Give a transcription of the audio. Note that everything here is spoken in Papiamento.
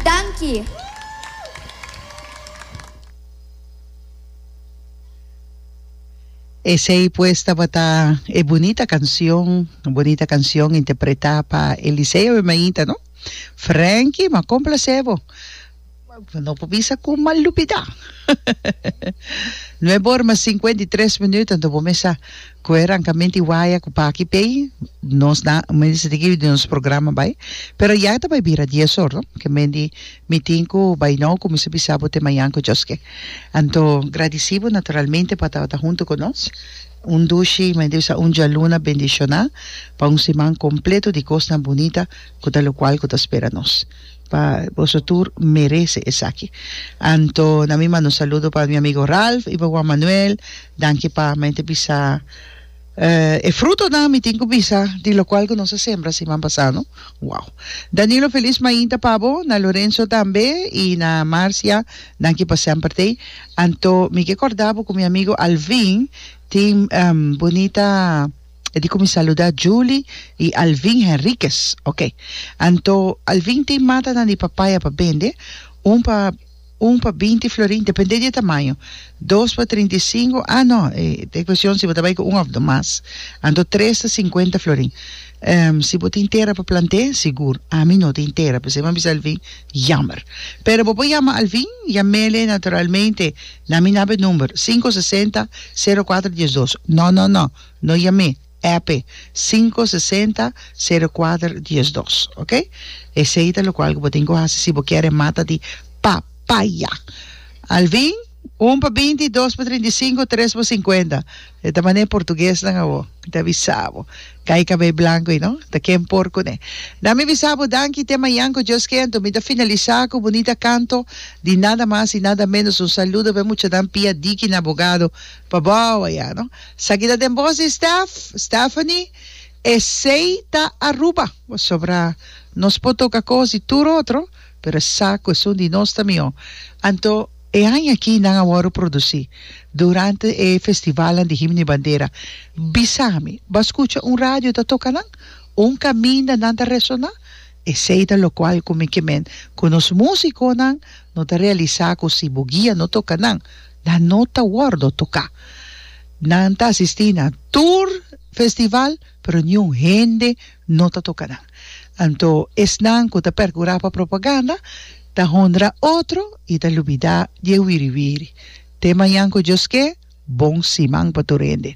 Danki. Esey pues tabata e bunita cancion, bunita cancion interpreta pa Eliseo y Mainta no? Franky, m'a complacebo. No por bisa cu m'a lubida. Nuebe ora mas cincuenta y tres minuto anto bo mesa cu e rancamento y waya cu paki pey nos na mende di kibi di nos programa bay pero ya ta bay bira dies or no ke mende mi tin cu bay no cu mi sa bisa bo te mañan cu Dios ke anto gradici bo naturalmente pa tabata hunto cu nos un dushi mi mende bisa un dialuna bendiciona pa un siman completo di cosnan bunita cu ta locual cu ta spera nos. Pa boso tur merece esaki. Anto na mi manda un saludo pa mi amigo Ralph y pa Juan Manuel. Danki pa men te bisa eh e frutonan mi tin cu bisa di locual cu nos a sembra siman pasá no. Wow. Danilo feliz mainta pa bo, na Lorenzo tambe y na Marcia danki pa semper tei. Anto mi ke corda bo cu mi amigo Alvin tin bonita. E di kuminsá luda Julie i Alvin Henriquez. Oke. Anto Alvin tin matanan di papaya pa bende, un pa un pa binti florin, dependé di e tamaño, dos pa trinta i sinku, ah no, e ta kuestion si bo ta bai ku un òf do mas, anto tres ta sinkuenta florin. Ehm, si bo tin tera pa plant'é, sigur, ami no tin tera, p'esei mi a bisa Alvin, yammer. Pero bo por yama Alvin, yam'é naturalmente na mi nab'e number, sinku sesenta sero kuater diesdos. No, no, no. No yam'é, app, sinku sesenta sero kuater dies dos, ok? Esei ta lokual ku bo tin ku hasi si bo kier e mata di papaya. Alvin, un pa binti, dos pa trinta i sinku, tres pa sinkuenta. E ta mané portuguesnan awor. Mi ta bisa bo. Kai kabei blanku ei, no? Ta ken por kuné. Na mi bisa bo danki te mañan ku Dios kentu. Mi ta finalisá ku bunita kanto di nada mas i nada ménos. Un saludo pa e muchanan pia diki na bogado. Pa bo awa ya no. Saki ta den bos di Steph, Stephanie, esey ta Aruba, pasobra nos por toca cos di tur otro, pero e sa cuestion di nos ta miho. Anto e aña aki nan a worde produci durante e festivalnan di himno y bandera, bisa mi, bo a scucha un radio ta toca nan? Un caminda nan ta resona? Esey ta locual cu mi ke men cu nos musiconan no ta realisa cu si bo guia no toca nan, Nan no ta wordo toca. Nan ta asisti na tur festival pero niun hende no ta toca nan. Anto esnan cu ta percura pa propaganda ta honra otro y ta lubida di e wiri wiri. Te mañan cu Dios ke, bon siman pa tur hende.